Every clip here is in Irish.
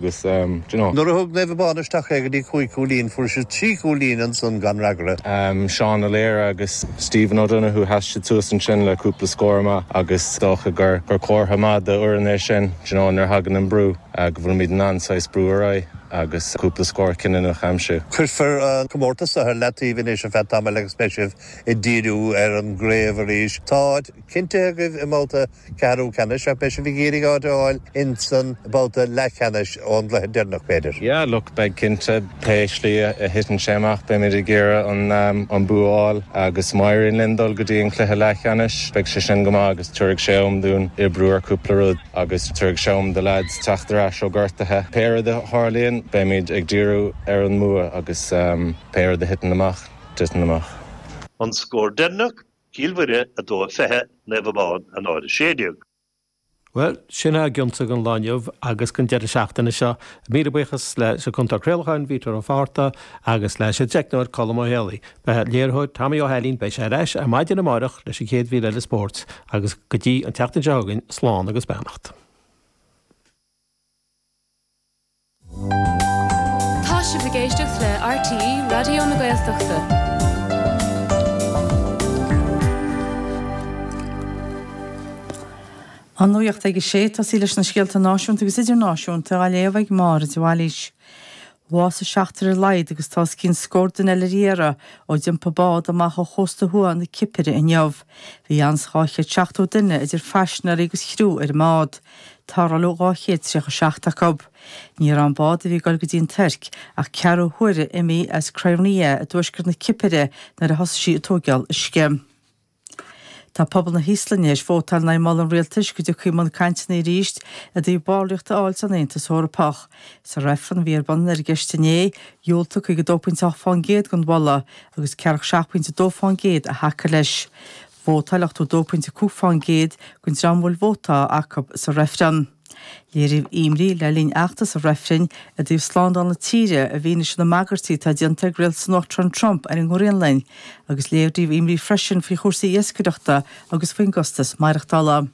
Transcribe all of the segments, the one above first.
Agus, d'you know. Nuair a thug Naomh Abán isteach é go dtí cúig chúilín fuair siad trí chúilín ansan gan fhreagra. Seán Ó Laoire agus Stephen O'Donoghue, sheas siad suas ansin le cúpla scór amach agus is dócha gur comhartha maith do fhoireann é sin, d'you know, nuair a thagann an brú, go bhfuilimid in ann saghas brú ar aghaidh agus cúpla scór cinniúnach a aimsiú. Cuirfear an comórtas seo ar leataobh anois ar feadh tamaill agus beidh sibh ag díriú ar an gcraobh arís. Tá áit chinnte agaibh i mbabhta ceathrú ceannais, ach beidh sibh ag iarraidh áit a fháil insan babhta leathcheannais ón gcluiche deireanach, b'fhéidir. Yeah, look, beidh cinnte. Pé slí a thiteann sé amach, beimid ag iarraidh an bua a fháil agus má éiríonn linn dul go dtí an cluiche leathcheannais, beidh sé sin go maith agus tabharfaidh sé am dúinn oibriú ar cúpla rud agus tabharfaidh sé am do lads teacht ar ais ó gortaithe. Pé rud a tharlaíonn, beimid ag díriú ar an mbua agus pé rud a thiteann amach, titeann amach. An scór deireanach, Cill Mhuire, 2:20, Naomh Abán, 1:16. Bhuel, sin a bhfuil againn don lá inniu agus don deireadh seachtaine seo. Míle buíochas leis an chúntóir craolacháin, Peadar Ó Fátharta, agus leis an teicneoir, Colm Ó hÉalaí. Ba é an léiritheoir Tommy Ó hAilín, beidh sé ar ais ar maidin amárach leis an chéad mhír eile spóirt, agus go dtí an tseachtain seo chugainn, slán agus beannacht. Tá sibh ag éisteacht le RTÉ Raidió na Gaeltachta. An Nuacht ag a Sé, tosóidh sí leis na scéalta náisiúnta agus idirnáisiúnta á léamh ag Máire de Bhailís. Bhásaigh seachtar ar laghad agus tá os cionn scór duine eile ar iarraidh ó d'iompaigh bád amach ó chósta thuaidh na Cipire inniu. Bhí anonn le 270 duine, idir phaisinéirí agus chriú, ar an mbád. Tarrtháladh 237 acu. Ní raibh an bád a bhí ag dul go dtí an Tuirc ach ceathrú uaire imithe as Kyrenia i dtuaisceart na Cipire nuair a thosaigh sí ag tóigeáil uisce. Tá pobal na hÍoslainne théis vótáil in aghaidh moladh an rialtais go dtiocfaí i mbun cainteanna arís i dtaobh ballraíocht a fháil san Aontas Eorpach. Sa reifreann a bhí ar bun ar an gceist inné, dhiúltaigh 52.8% don mholadh agus 47.2% a thacaigh leis. Vótáil 82.5% den dream a bhfuil vótá acu sa reifreann. Léiríodh imní le linn fheachtas an reifrinn i dtaobh slándáil na tíre i bhfianaise na mbagairtí atá déanta ag rialtas an Uachtaráin Trump ar an nGraonlainn agus léiríodh imní freisin faoi chúrsaí iascaireachta agus faoin gcostas maireachtála.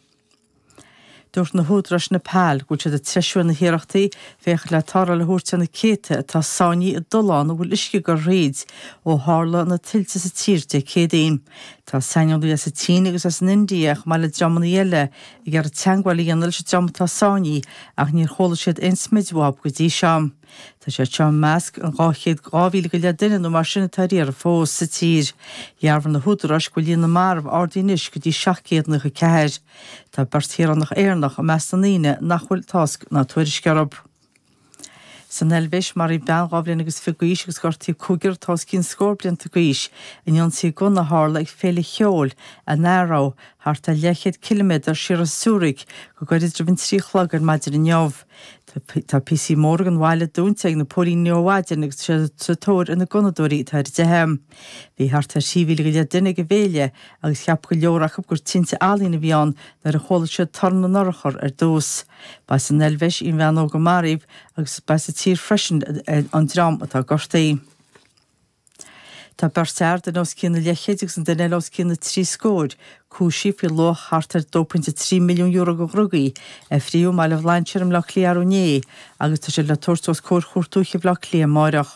Dúirt na húdaráis i Neipeal go bhfuil siad ag treisiú ar na hiarrachtaí féachaint le tarrtháil a thabhairt ar na céadta atá sáinnithe i dtolláin a bhfuil uisce ag goil thríothu ó tharla na tuilte sa tír Dé Céadaoin. Tá saineolaithe as an tSín agus as an India, chomh maith le dreamanna eile, ag iarraidh teagmháil a dhéanamh leis an dream atá sáinnithe ach níor chuala siad aon smid uathub go dtí seo. Tá siad seo i measc an 200, 2,000 go leith duine nó mar sin atá ar iarraidh fós sa tír. Dhearbhaigh na húdaráis go bhfuil líon na marbh ardaithe anois go dtí 794. Tá beirt shaoránach Éireannach i measc na ndaoine nach bhfuil tásc ná tuairisc orthu. San Eilvéis, maraíodh bean dhá bhliain agus fiche d'aois agus gortaíodh cúigear atá os cionn scór blianta d'aois in ionsaí gunna a tharla ag féile cheoil in Aarau, thart ar leathchéad ciliméadar siar as Zürich, go gairid roimh an trí a chlog ar maidin inniu. Tá píosaí móra den bhaile dúnta ag na póilíní ó mhaidin agus tá siad sa tóir ar na gunnadóirí atá ar a dteitheadh. Bhí thart ar thrí mhíle go leith duine ag an bhféile agus cheap go leor acu gur tinte ealaíon a bhí ann nuair a chuala siad torann na n-urchar ar dtús. Ba as an Eilvéis í an bhean óg a maraíodh agus ba as an tír freisin an dream atá gortaithe. Tá beirt fhear, duine os cionn an leathchéid agus an duine eile os cionn na trí scóir, cúisithe faoi luach thart ar €2.3 milliún de dhrugaí a fríothadh i mBaile Bhlainséir i mBleá Cliath arú inné agus tá siad le tabhairt os comhair Chúirt Dúiche Bhleá Cliath amárach.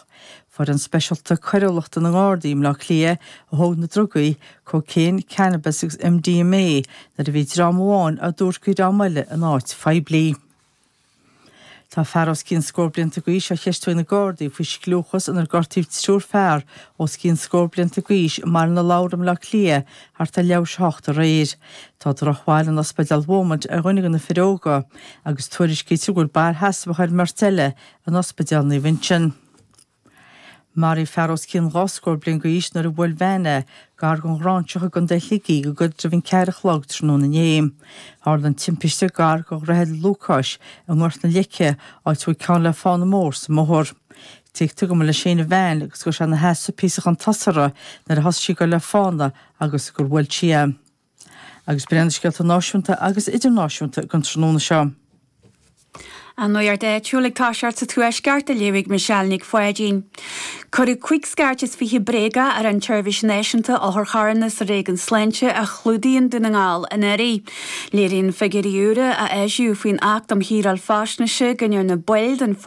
Foireann speisialta coiriúlachta na nGardaí i mBleá Cliath a thóg na drugaí, cocaine, cannabis agus MDMA, nuair a bhí dream amháin á dtabhairt do dhream eile in áit phoiblí. Tá fear os cionn scór blianta d'aois á cheistiú ag na Gardaí faoi scliúchas inar gortaíodh triúr fear os cionn scór blianta d'aois i mBaile na Lobhar i mBleá Cliath thart ar leathuair tar éis a hocht aréir. Tá drochbhail in Ospidéal Beaumont ar dhuine de na fir óga agus tuairiscítear go bhfuil bail sheasmhach ar an mbeirt eile in Ospidéal Naomh Uinseann. Maraíodh fear os cionn dhá scór bliain d'aois nuair a bhuail veain é, gar don Ghráinseach i gContae Shligigh go gairid roimh an ceathair a chlog tráthnóna inné. Tharla an timpiste gar do Dhroichead Lúcáis i nGort na Leice, áit a bhfuil ceann le fána mór sa mbóthar. Tuigtear go mba leis féin an veain agus go raibh sé ina sheasamh píosa chun tosaigh uirthi nuair a thosaigh sí ag dul le fána agus gur bhuail sí é. Agus b'in iad na scéalta náisiúnta agus idirnáisiúnta don tráthnóna seo. An nuacht áitiúil ag toiseacht sa Tuaisceart, á léamh ag Michelle Nic Pháidín. Cuireadh cúig scairt is fiche bréaga ar an tSeirbhís Náisiúnta Otharcharranna sa Réigiún Sláinte a chlúdaíonn Dún na nGall anuraidh. Léiríonn figiúirí úra a eisíodh faoin Acht um Shaoráil Faisnéise go ndearna baill den